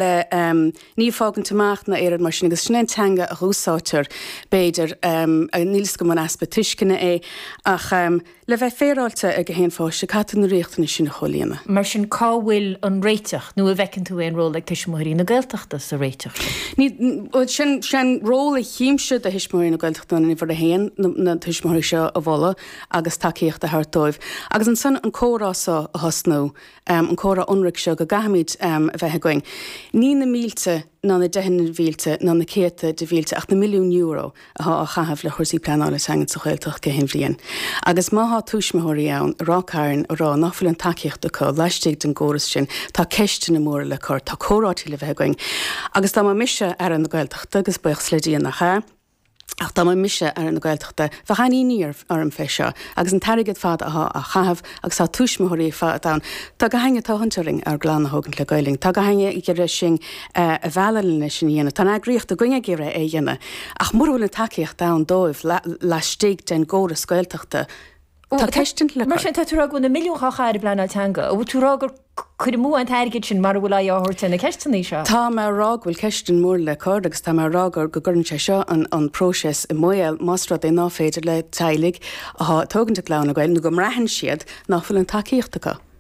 Níl, fágaint amach ná éireoidh mar sin, agus sin é an teanga a dh'úsáidtear, b'fhéidir, níl 'fhios agam an easpa tuisceana é, ach le bheith féaráilte ar gach aon pháiste, caithfidh tú na riachtanais sin a chomhlíonadh. Mar sin, cá bhfuil an réiteach, nó an bhfeiceann tú aon ról ag Tuismitheoirí na Gaeltachta sa réiteach sin? Bhuel, sé'n ról a chímse do Thuismitheoirí na Gaeltachta ná uimhir a haon, na tuismitheoirí seo a mholadh agus tacaíocht a thabhairt dóibh, agus ansan an comhrá so a thosnú. an comhrá ionraic seo go gcaithfimid a bheith againn, ní na mílte ná na deicheanna mhílte ná na céadta de mhílte ach na milliúin euro atá á chaitheamh le cúrsaí pleanála teangan sa Ghaeltacht gach aon bhliain. Agus má tá tuismitheoirí ann i Ráth Cairn ag rá nach bhfuil an tacaíocht acu laistigh den gcóras sin, tá ceisteanna móra le cur, tá comhráití le bheith againn. Agus dá mba mise Aire na Gaeltachta, agus buíochas le Dia nach ea, Ach dá mba mise Aire na Gaeltachta, bheadh an-imní orm fé seo, agus an t-airgead ar fad athá á chaitheamh, agus tá tuismitheoirí fud ann. Tá gach éinne ag tathant orainn ár gclann a thógaint le Gaelainn. Tá gach éinne ag iarraidh sinn a mhealladh le é sin a dhéanamh. Tá an eagraíocht againn ag iarraidh é a dhéanamh. Ach mura bhfuil an tacaíocht ann dóibh laistigh den gcóras Gaeltachta, Tá ceist le cur. Mar sin, tá tú ag rá go bhfuil na milliúin á chaitheamh ar bpleanáil teanga. An bhfuil tú ag rá gur cur amú an t-airgead sin mura bhfuil aghaidh á thabhairt ar na ceisteanna seo? Tá mé ag rá go bhfuil ceisteanna móra le cur agus tá mé ag rá go gcuireann sé seo an próiseas i mbaol más rud é ná féidir le teaghlaigh atá ag tógaint a gclann le Gaeilge nó go mbraitheann siad nach bhfuil an tacaíocht acu.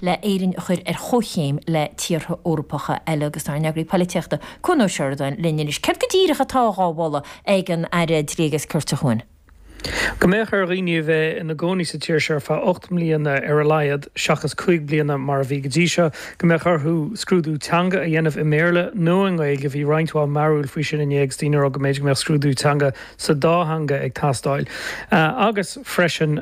le hÉirinn a chur ar chomhchéim le tíortha Eorpacha eile agus tá ár n-eagraí polaitíochta, Cuan Ó Seireadáin, linn anois. Céard go díreach atá dhá mholadh ag an Aire Dlí agus Cirt, a Chuan? Go mbeadh ar dhaoine a bheith ina gcónaí sa tír seo ar feadh ocht mbliana ar a laghad, seachas cúig bliana mar a bhí go dtí seo. Go mbeadh orthu scrúdú teanga a dhéanamh i mBéarla nó i nGaeilge, bhí roinnt mhaith mearbhaill faoi sin inné agus daoine ag rá go mb'fhéidir go mbeadh scrúdú teanga sa dá theanga ag teastáil. Agus freisin.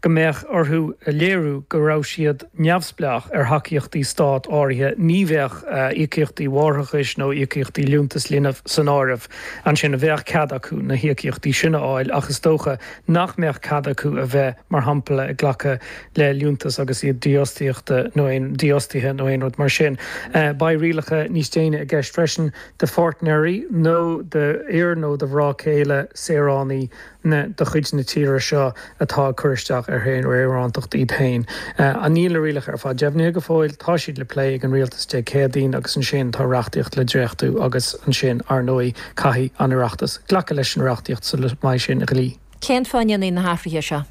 go mbeadh orthu a léiriú go raibh siad neamhspleách ar thacaíochtaí stáit áirithe, ní bheadh íocaíochtaí máithreachais nó íocaíochtaí liúntas linbh san áireamh, ansin bheadh cead acu na híocaíochtaí sin a fháil ach is dócha nach mbeadh cead acu a bheith, mar shampla, ag glacadh le liúntas agus iad dífhostaíochta nó aon, dífhostaithe nó aon rud mar sin. Beidh rialacha níos déine i gceist freisin do pháirtnéirí nó d'fhir nó do mhná céile saoránaigh. na de chuid na tíre seo atá ag cur isteach ar shaoránacht iad féin. Níl na rialacha ar fad deimhnithe go fóill. Tá siad le plé ag an rialtas Dé Céadaoin agus ansin tá reachtaíocht le dréachtú agus ansin, ar ndóigh, caithfidh an tOireachtas glacadh leis an reachtaíocht sula mbeidh sé ina dhlí. Cén fáth a ndéanfaí na hathruithe seo?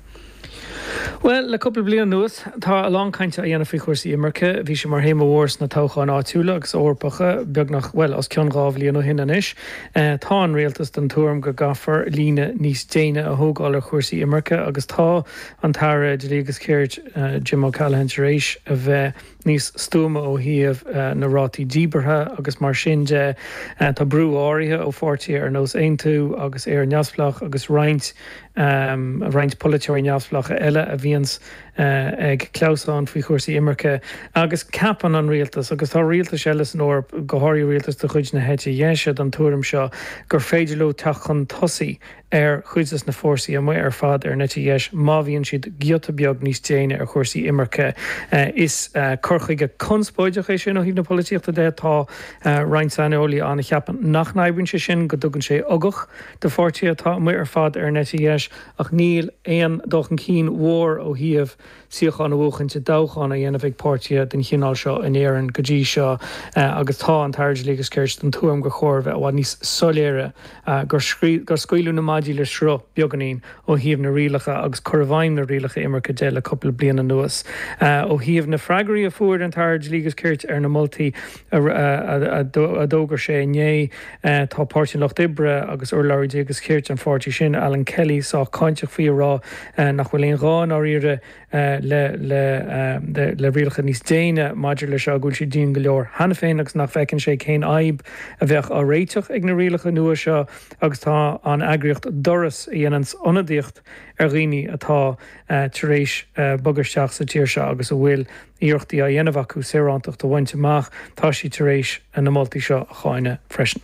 Bhuel, le cúpla bliain anuas, tá a lán cainte á dhéanamh faoi chúrsaí imirce. Bhí sé mar théama mhór sna toghcháin áitiúla agus Eorpacha beagnach, bhuel, os cionn dhá bhliain ó shin anois. Tá an rialtas den tuairim go gcaithfear líne níos déine a thógáil ar chúrsaí imirce agus tá an tAire Dlí agus Cirt, Jim O'Callaghan tar éis a bheith níos stuama ó thaobh na rátaí díbeartha agus mar sin de. Tá brú áirithe ó pháirtithe ar nós Aontú agus Éire Neamhspleách agus roinnt. roinnt polaiteoirí neamhspleácha eile a bhíonns ag clamhsán faoi chúrsaí imirce, agus ceapann an rialtas, agus tá rialtais eile san Eoraip, go háirithe rialtais de chuid na heite dheise, den tuairim seo, gur féidir leo teacht chun tosaigh ar chuid de na fórsaí amuigh ar fad ar an eite dheis má bhíonn siad giota beag níos déine ar chúrsaí imirce. Is cur chuige conspóideach é sin ó thaobh na polaitíochta de. Tá roinnt saineolaí ann a cheapann nach n-oibríonn sé sin, go dtugann sé uchtach. do pháirtithe atá amuigh ar fad ar an eite dheis, ach níl aon dul chun cinn mhór ó thaobh suíochán a bhuachaint i dtoghchán á dhéanamh ag páirtithe den chineál seo in Éirinn go dtí seo agus tá an tAire Dlí agus Cirt den tuairim gur chóir a bheith i bhfad níos soiléire gur scaoileadh na maidí le sruth beagainín ó thaobh na rialacha agus cur i bhfeidhm na rialacha imirce de le cupla bliain anuas. Ó thaobh na freagraí a fuair an tAire Dlí agus Cirt ar na moltaí, a d'fhógair sé inné. Tá Páirtí an Lucht Oibre agus urlabhraí dlí agus cirt an pháirtí sin, Alan Kelly, sách cáinteach faoi, ag rá nach bhfuil aon ghá, i ndáiríre, le rialacha níos déine maidir leis seo, go bhfuil siad dian go leor cheana féin agus nach bhfeiceann sé cén fhadhb a bheadh á réiteach ag na rialacha nua seo agus tá an eagraíocht Doras, a dhéanann ionadaíocht ar dhaoine atá tar éis bogadh isteach sa tír seo agus a bhfuil. iarrachtaí á dhéanamh acu saorántacht a bhaint amach, tá siad tar éis na moltaí seo a cháineadh freisin.